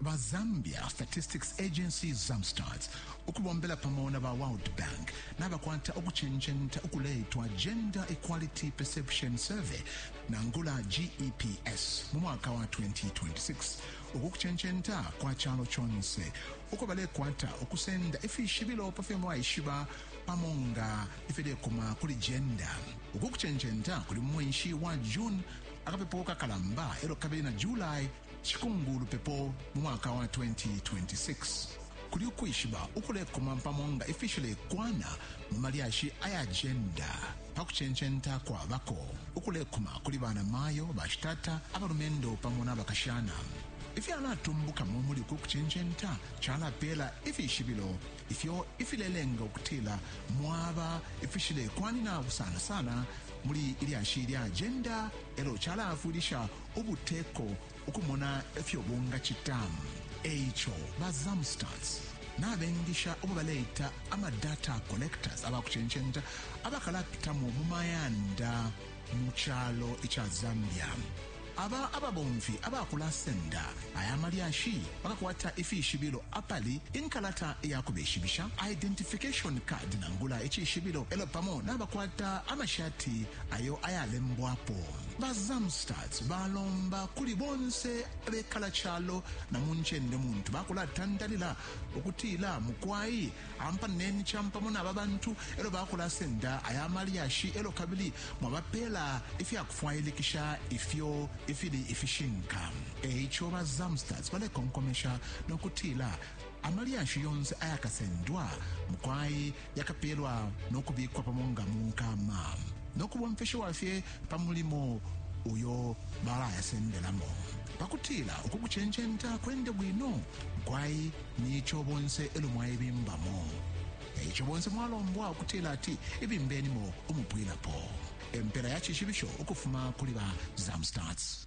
ba Zambia Statistics Agency Zamstats ukubombela pamo na ba World Bank nabakwata ukucenjenta ukuleitwa Gender Equality Perception Survey nangula GEPS mu mwaka wa 2026 uku kucenjenta kwa calo conse uko balekwata ukusenda ifishibilo pa fyo mwaishiba pamo nga ifilekuma kuli gender uku kucenjenta kuli mu mwenshi wa June akapepo kakalamba elo kabili na July Cikumbu lupepo mu mwaka wa 2026 kuli ukwishiba ukulekuma pamo nga ifishilekwana mu malyashi aya jenda pa kucencenta kwabako ukulekuma kuli bana mayo, bashitata, abalumendo pamo na bakashana. Ifyalatumbukamo muli uku kucencenta calapeela ifishibilo ifyo ifilelenga ukutila mwaba ifishilekwanina sana sana muli ilyashi lya jenda elo calaafwilisha ubuteko ukumona ifyo bungacita e ico ba zamstats nabengisha ubo baleita amadata collectors abakucencenta abakalapitamo mu mayanda mu calo ica zambia aba ababomfi abakulasenda aya malyashi bakakwata ifishibilo apali inkalata iyakubeshibisha identification card nangula icishibilo elo pamo nabakwata amashati ayo ayalembwapo Ba Zamstats balomba kuli bonse abekala calo na mu ncende muntu bakulatandalila ukutila mukwai ampaneni campamo naba bantu elo bakulasenda aya malyashi elo kabili mwabapela ifyakufwailikisha ifyo ifili ifishinka eico ba Zamstats balekonkomesha nokutila amalyashi yonse ayakasendwa mukwai yakapeelwa no kubikwa pamo nga mu nkama no kubomfeshiwa fye pa mulimo uyo balayasendelamo pa kutila uku kucencenta kwende bwino kwai ni ico bonse elo mwaibimbamo e ico bonse mwalombwa ukutila ati ibimbenimo umupwilapo empela ya cishibisho ukufuma kuli ba zamstats